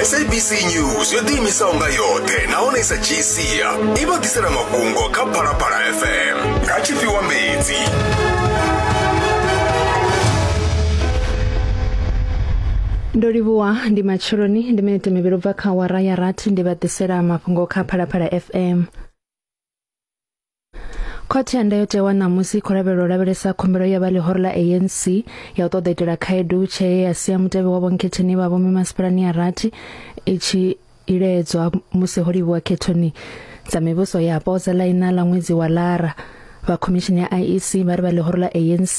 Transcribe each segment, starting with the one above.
sabc news yo ḓiimisaho nga yoṱhe nahone i sa dzhii sia i vha ḓisela mafhungo kha phalaphala fm nga tshifhiwa mbedzi ndo livhuwa ndi matsheloni ndi minete mivhili ubva kha wara ya rathi ndi vha ḓisela mafhungo kha phalaphala fm khothe ya ndayotewa ṋamusi i khou lavhelela u lavhelesa khumbelo ya vha ḽihoro ḽa anc ya u ṱoḓa itela khaedu tshee ya sia mutevhe wa vhonkhetheni vha vho mimasipalani ya rathi i tshi iledzwa musi ho livhuwa khethoni dza mivhuso yapo dza ḽaina ḽa ṅwedzi wa lara vha khomishini ya IEC vha ri vha ḽihoro ḽa ANC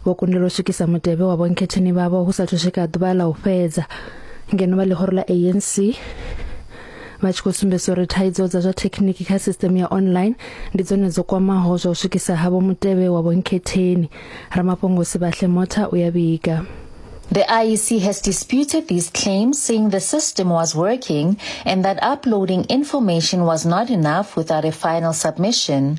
vho kundelwa u swikisa mutevhe wa vhonkhetheni vhavho hu sa thu swika ḓuvha ḽa u fhedza ngeno vha ḽihoro ḽa ANC vha tshi khou sumbedzisa uri thaidzo dza zwa thekhiniki kha system ya online ndi dzone dzo kwamaho zwa u swikisa havho mutevhe wa vhonkhetheni ramafhungo sibahle motha u ya vhiga The IEC has disputed these claims, saying the system was working and that uploading information was not enough without a final submission.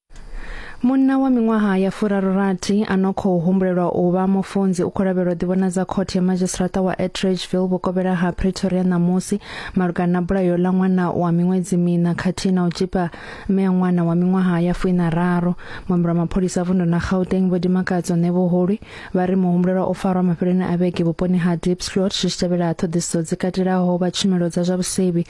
Munna wa miṅwaha ya furarurathi a no khou humbulelwa u vha mufunzi u khou lavhelwa ḓivhonadza khothe ya madzhisiṱiraṱa wa Atteridgeville vhukovhela ha Pretoria ṋamusi malugana na bulayo ḽa ṅwana wa miṅwedzi miṋa khathihi na u tzhipa mme ya ṅwana wa miṅwaha ya fuinararu. Muambeli wa mapholisa a vundu na Gauteng Vho Dimakadzo Nevoholi vha ri muhumbulelwa o farwa mafheloni a vhege vhuponi ha Diepsloot zwi tshi tevhela ṱhoḓisiso dzi katelaho vha tshumelo dza zwa vhusevhi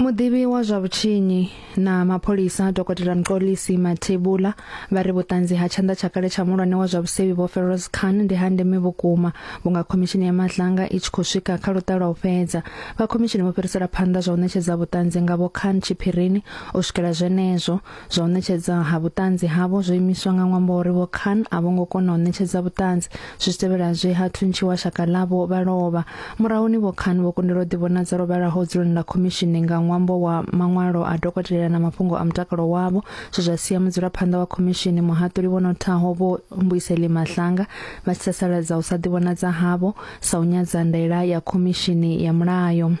muḓivhi wa zwa vhutshinyi na mapholisa dokotela mxolisi mathebula vha ri vhuṱanzi ha tshanḓa tsha kale tsha mulwane wa zwa vhusevhi vho Feroz Khan ndi ha ndeme vhukuma vhunga khomishini ya matlanga i tshi khou swika kha luṱalo u fhedza vha khomishini vho fhirisela phanḓa zwa u ṋetshedza vhuṱanzi nga vho Khan tshiphirini u swikela zwenezwo Zwa u ṋetshedza ha vhuṱanzi havho zwo imiswa nga ṅwambo uri vho Khan a vho ngo kona u ṋetshedza vhuṱanzi. Zwi tshi tevhela zwe ha thuntshiwa shaka ḽavho vha lovha. Murahuni vho Khan vho kundelwa u ḓivhonadza lwo vhalaho dzuloni ḽa khomishini nga ṅwambo wa maṅwalo a dokotela na mafhungo a mutakalo wavho zwe zwa sia mudzulaphanḓa wa khomishini muhaṱuli vho nothaho vho Mbuyiseli Mahlanga vha tshi sasaladza u sa ḓivhonadza havho sa u nyadza ndaela ya khomishini ya mulayo.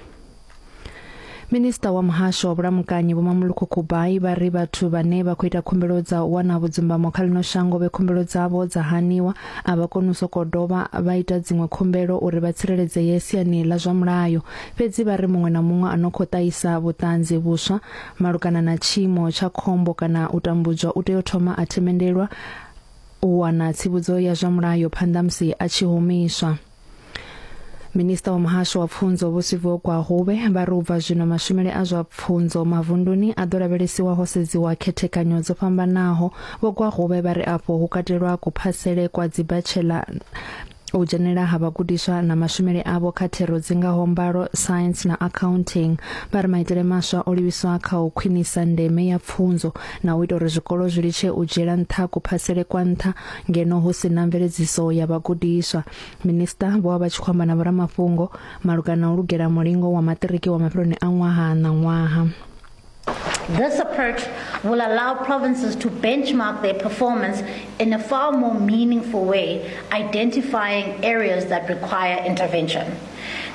Minista wa muhasho wa vhulamukanyi Vho Mamuluko Kubai vha ri vhathu vhane vha khou ita khumbelo dza u wana vhudzumbamo kha ḽino shango vhe khumbelo dzavho dza haniwa a vha koni u sokou dovha vha ita dziṅwe khumbelo uri vha tsireledzeye siani ḽa zwa mulayo fhedzi vha ri muṅwe na muṅwe a no khou ṱahisa vhuṱanzi vhuswa malugana na tshiimo tsha khombo kana u tambudzwa u tea u thoma a themendelwa u wana tsivhudzo ya zwa mulayo phanḓa musi a tshi humiswa. minista wa muhasho wa pfunzo vho siviwe gwahube vha ri u bva zwino mashumele a zwa pfunzo mavunduni a ḓo lavhelesiwa ho sedziwa khethekanyo dzo fhambanaho vho gwahube vha ri afho hu katelwa kuphasele kwa dzibachela u dzhenela ha vhagudiswa na mashumele avho kha thero dzi ngaho mbalo science na accounting vha ri maitele maswa o livhiswa kha u khwinisa ndeme ya pfunzo na u ita uri zwikolo zwi litshe u dzhiela nṱha kuphasele kwa nṱha ngeno hu si na mveledziso ya vhagudiswa. Minisiṱa vho vha vha tshi khou amba na vhoramafhungo malugana na u lugela mulingo wa maṱiriki wa mafheloni a ṅwaha na ṅwaha. This approach will allow provinces to benchmark their performance in a far more meaningful way, identifying areas that require intervention.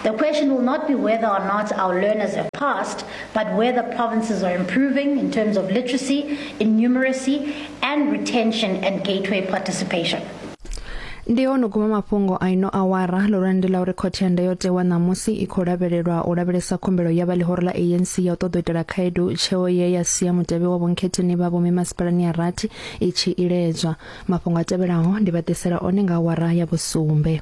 The question will not be whether or not our learners have passed, but whether provinces are improving in terms of literacy, innumeracy, and retention and gateway participation. ndi ono guma mafhungo a ino awara lurandi la uri khothe ya ndayotewa ṋamusi i khou lavhelelwa u lavhelesa khumbelo ya vha ḽihoro ḽa anc ya u ṱoḓa u itela khaedu tsheo ye ya sia mutevhe wa vhonkhetheni vha vhomi masipalani ya rathi i tshi iledzwa mafhungo a tevhelaho ndi vha ḓisela one nga awara ya vhusumbe